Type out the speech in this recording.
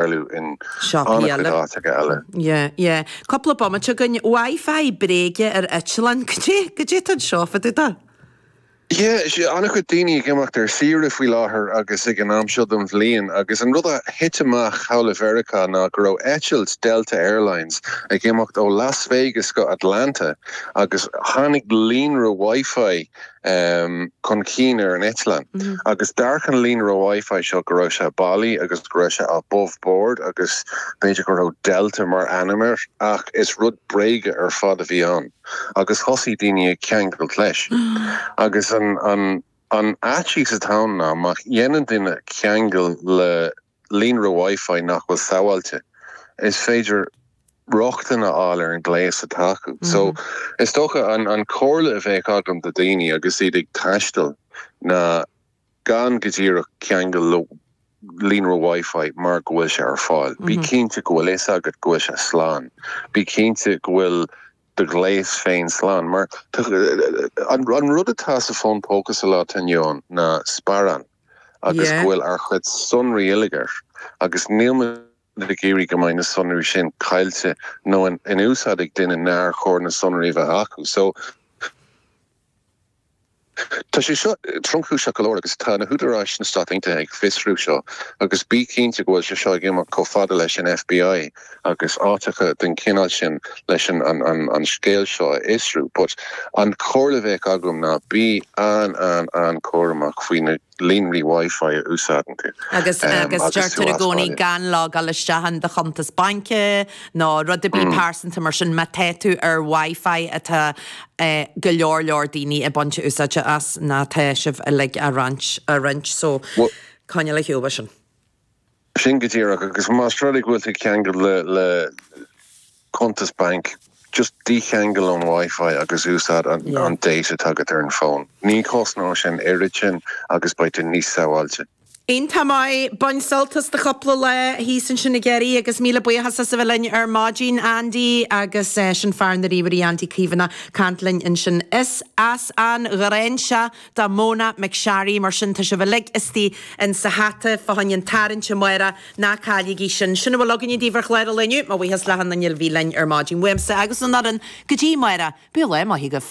bailiú in an-chuid áiteacha eile. Yeah, yeah. Cúpla bomaite againn. Wi-Fi bréige ar eitleáin, goidé, goidé tá anseo fá dtaobh de? Yeah, an-chuid daoine ag imeacht ar saoire faoi láthair agus ag an am seo den bhliain agus an rud a thit amach thall i Meiriceá ná go raibh eitilt Delta Airlines ag imeacht ó Las Vegas go Atlanta agus tháinig líonra Wi-Fi chun cinn ar an eitleán agus d'amharc an líonra Wi-Fi seo go raibh sé bailí agus go raibh sé above board agus b'fhéidir go raibh Delta mar ainm air ach is rud bréige ar fad a bhí ann agus thosaigh daoine ag ceangailt leis agus an fhaitíos atá ann ná má dhéanann duine ceangal le líonra Wi-Fi nach bhfuil sábháilte, is féidir rochtain a fháil ar an ghléas atá acu. So, is dócha, an comhairle a bheadh agam do dhaoine agus iad ag taisteal ná gan go díreach ceangal le líonra Wi-Fi mar go bhfuil sé ar fáil. Bí cinnte go bhfuil a fhios agat go bhfuil sé slán. Bí cinnte go bhfuil do ghléas féin slán. Mar an rud atá sa fón póca sa lá atá inniu ann ná sparán agus go bhfuil ár chuid sonraí uilig air agus níl muid ag iarraidh go mbeidh na sonraí sin caillte nó in úsáid ag duine nár chóir na sonraí a bheith acu. So. Tá sé seo tromchúiseach go leor agus tá na húdaráis sna Stáit Aontaithe ag fiosrú seo agus bí cinnte go bhfuil sé seo ag imeacht chomh fada leis an FBI agus áiteacha den chineál sin leis an scéal seo a fhiosrú but an chomhairle a bheadh agam ná bí an-an-an-chúramach faoi na líonraí WiFi a úsáideann tú agus agus deirtear i gcónaí gan logáil isteach in do chuntas baince nó rud ar bith pearsanta mar sin má tá tú ar WiFi atá go leor leor daoine ag baint úsáide as nó tá sibh uilig á roinnt so coinneáil ar shiúl as sin. Sin go díreach, agus más rud é go bhfuil tú ag ceangal le cuntas bainc, just dícheangail ón WiFi agus úsáid an data atá agat ar an bhfón. Ní chosnóidh sé an oiread sin agus beidh tú níos sábháilte. Iontach maith. Bain sult as do chúpla lá thíos ansin i gCiarraí agus míle buíochas as a bheith linn ar maidin, Andy, agus sin fear na ríomhairí, Andy Caomhánach, ag caint linn ansin. Is as an Ghráinseach do Mona McSharry mar sin, tá sibh uilig istigh insa hata fá choinne an tarraingt amárach, ná cailligí sin. Sin a bhfuil againne daoibh ar chlár an lae inniu, mo bhuíochas le achan duine a bhí linn ar maidin uaimse agus ón fhoireann go dtí amárach, bíodh lá maith agaibh.